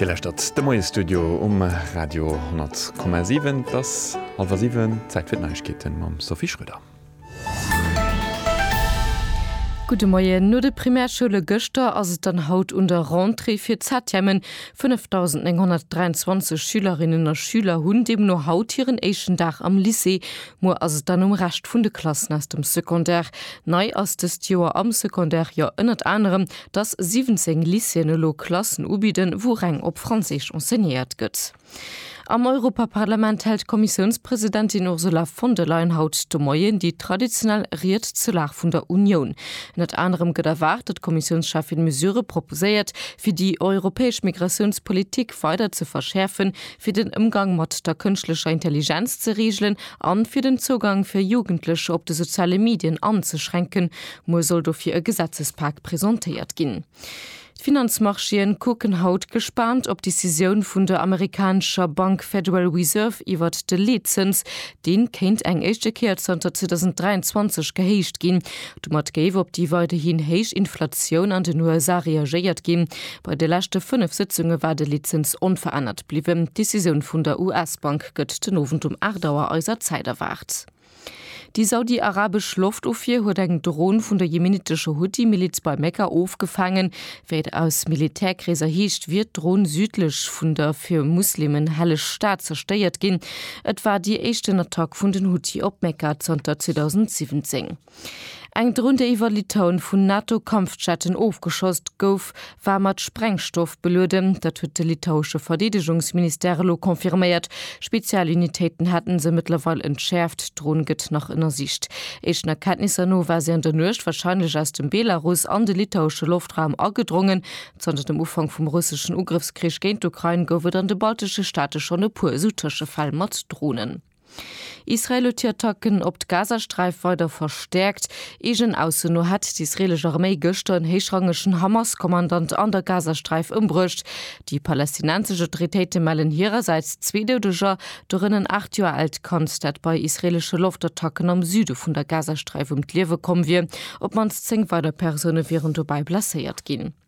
Dir läschtert de Moiesstudio um Radio 10,7. Et ass hallwer siwen, Zäit fir d'Neiegkeeten mam Sophie Schröder. Gudde Moien. No de Primärschoule gëschter ass et dann haut un der Rentrée fir d'Septièmen. 5.923 Schülerinnen a Schüler hunn deemno haut hiren éischten Dag am Lycée. Muer ass et dann um Rescht vun de Klassen aus dem Secondaire. Nei ass dëst Joer am Secondaire jo ënnert anerem, dass 17 Lycéeën elo Klassen ubidden, wou reng op Franséisch enseignéiert gëtt. Am Europaparlament hält d'Kommissiounspresidentin Ursula von der Leyen haut de Moien déi traditionell Ried zur Lag vun der Unioun. Ënnert anerem gëtt erwaart, datt d'Kommissiounscheffin Mesurë proposéiert, fir déi europäesch Migratiounspolitik weider ze verschäerfen, fir den Ëmgang mat der kënschtlecher Intelligenz ze reegelen an fir den Zougang fir Jugendlecher op de soziale Medien anzeschränken, Muer soll dofir e Gesetzespak presentéiert ginn. D'Finanzmarchéen kucken haut gespaant op d'Decisioun vun der amerikanescher Bank Federal Reserve iwwert de Leetzëns. Dee kéint eng éischte Kéier zanter 2023 gehéicht ginn. Domat géif op déi weiderhin héich Inflatioun an den USA reagéiert ginn. Bei de leschte fënnef Sëtzunge war de Leetzëns onverännert bliwwen. D'Decisioun vun der US-Bank gëtt den Owend um 8 Auer eiser Zäit erwaart. Déi saudi-arabesch Loftofwier huet eng Dron vun der jemenitescher Huthi-Miliz bei Mekka ofgefaangen. Wéi et aus Militärkreeser heescht, wier d'Dron südlech vun der fir Muslimen helleg Stad zerstéiert ginn. Et war déi éischten Attack vun den Huthi op Mekka zanter 2017. Eng Dron, déi iwwer Litauen vun NATO-Kampfjetten ofgeschoss gouf, war mat Sprengstoff belueden. Dat huet de litauesche Verdeedegungsministère elo confirméiert. Spezialunitéiten hätte se mëttlerweil entschäerft. D'Dron gëtt nach ënnersicht. Éischten Erkenntnisser no war se an der Nuecht warscheinlech aus dem Belarus an de litauesche Loftraum agedrongen. Zanter dem Ufank vum russeschen Ugrëffskrich géint d'Ukrain gouf et an de baltesche Staate schonn e puer esou Tëschefäll mat Dronen. Israel huet hir Attacken op d'Gazasträif weider verstäerkt. Eegen Ausso no hätt d'israelesch Arméi gëschter en héichrangegen Hamas-Kommandant an der Gazasträif ëmbruecht. Déi palästinensesch Autoritéite mellen hirersäits zwee Doudeger, dorënner en 8 Joer aalt Kand, dat bei israeleschen Loftattacken am Süde vun der Gazasträif ëm d'Liewe komm wier. Op d'mannst 10 weider Persoune wieren dobäi blesséiert ginn.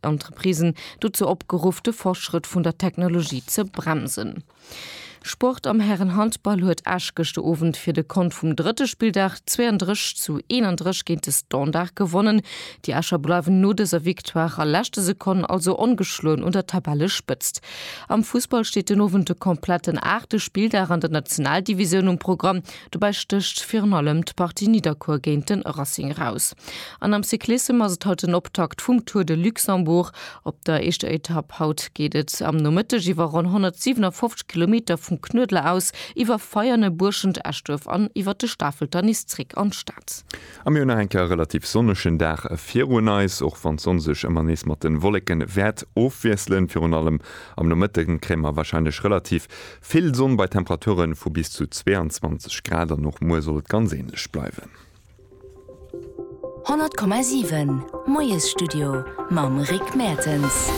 Entreprisen dozou opgeruff, de Fortschrëtt vun der Technologie ze bremsen. Sport, Am Härenhandball huet Esch gëschter Owend fir de Kont vum drëtte Spilldag 32 zu 31 géint de Standard gewonnen. Déi Escher bleiwen no dëser Victoire a leschte Sekonn also ongeschloen un der Tabellespëtzt. Am Fussball steet den Owend de kompletten aachte Spilldag an der Nationaldivisioun um Programm. Dobäi stécht virun allem d'Partie Nidderkuer géint de Racing eraus. An am Cyclissem ass et haut den Optakt vum Tour de Luxembourg. Op der éischter Etapp haut geet et am Nomëtteg iwwer ronn 157 Kilometer vum Knuedler aus, iwwer Veianen, Buerschent, Eschduerf an iwwer de Stafelter nees zréck an d'Stad. A mir hunn nach eng Kéier e relativ sonnegen Dag virun eis, och wann d'Sonn sech ëmmer nees mat de Wolleke wäert ofwiesselen. Virun allem am Nomëtte kréie mer warscheinlech relativ Vill Sonn bei Temperature vu bis zu 22 Grad an och muer soll et ganz änlech bleiwen. 100,7 Moiesstudio mam Rick Mertens.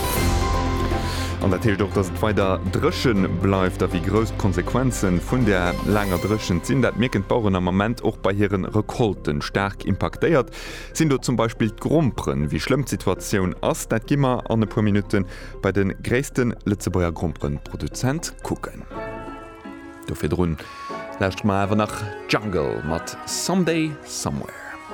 An dat heescht och, dass et weider dréche bleift. A wéi grouss d'Konsequenze vun där laanger Dréchent sinn, dat mierken d'Baueren am Ament och bei hire Recolten. Staark impaktéiert sinn do zum Beispill d'Gromperen. Wéi schlëmm d'Situatioun ass, dat gi mer an e puer Minutten Bei de gréisste Lëtzebuerger Gromperenproduzent kucken. Do virdrun lauschteren mer awer nach Jungle mat Someday Somewhere.